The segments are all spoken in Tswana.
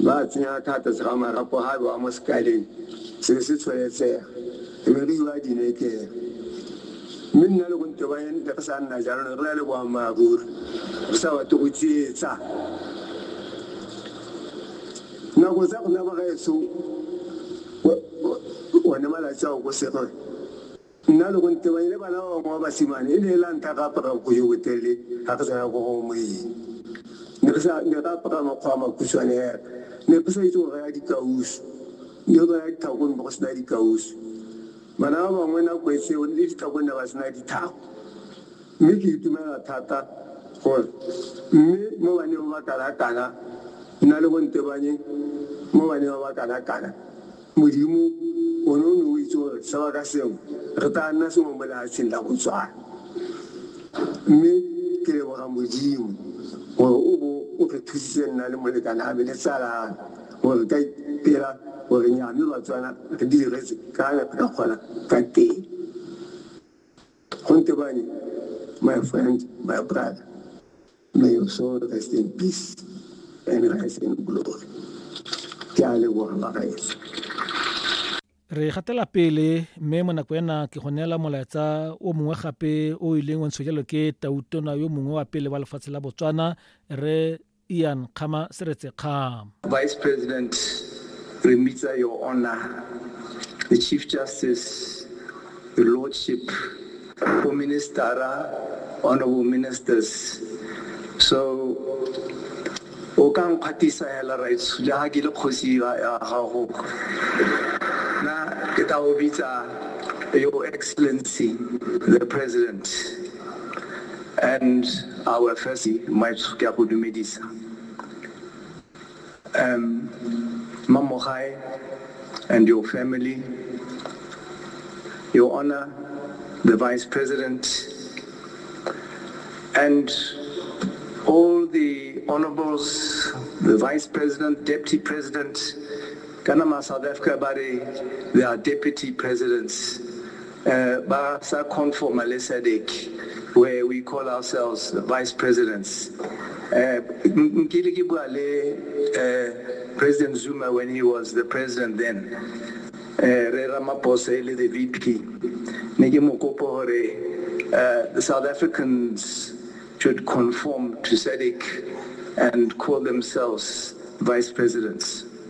Ba a tsenya ka fa tlase ga marapo ga bewa mo sekaleng se be se tsholetshega, e be re iwa dinekeng. Mme nna le Konte ba ne re sa nna jalo, ne re na le boammaaruri, re sa batle go tsietsa. Nako tsa rona bagaetsho, one malatsi ao ko Serwe. Nna le go ntebanye le bana ba bangwe ba basimane e ne e la ntlha ka apara bokgo jo botelele ga ke tsena ko go moeng. Ne ka apara makgo a makhutshwane hela. Ne ke sa itse go raya dikausu. Ne go raya ditlhako ne go sena dikausu. Bana ba bangwe nako e seo le ditlhako ne ba sena ditlhako. Mme ke itumela thata gore mme mo baneng ba ba kana-kana nna le go ntebanye mo baneng ba ba kana-kana Modimo, one o ne o itse gore sengwe ka sengwe re tla nna sengwe mo lefatsheng la Botswana. Mme ke leboga Modimo gore o bo o re thusitse nna le molekane ame le tsala ame gore re ka ipela gore nya mme Batswana re diretse ka ne re ka kgona ka teng. Funke Bani, my friend, my brother, may your soul rest in peace and rise in glory. Ke a leboga bagaetsi. re gatela pele mme mo nako ena ke go neela molaetsa o mongwe gape o ileng wa ntshwa jalo ke tautona yo mongwe wa pele wa lefatshe la botswana re Ian Kgama Seretse Kgam. Vice President, re mmitsa Your Honor, the Chief Justice, Your Lordship, bo ministara, honorable ministers. So, o ka nkgwatisa hela right jaha ke le kgosi ya gago. Na ke tla o bitsa Your Excellency, the President. And our first maitso ke a go dumedisa um mamogae and your family your honor the vice president and all the honorables the vice president deputy president kana ma south africa ba re they are deputy presidents Ba sa conformer le Sadc where we call ourselves the vice presidents. Nkile ke bua le President Zuma when he was the president then. Rre Ramaphosa e le the VP. Ne ke mo kopa hore the South Africans should conform to Sadc and call themselves vice presidents.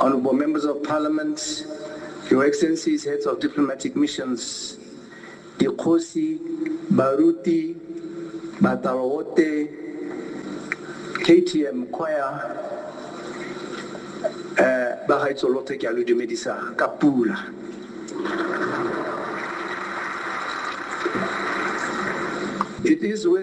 Honorable members of parliament, your excellencies, heads of diplomatic missions, dikgosi, baruti, batalowote, KTM choir, eh, ba gaitso lothe ke a lo dumedisa ka pula. It is with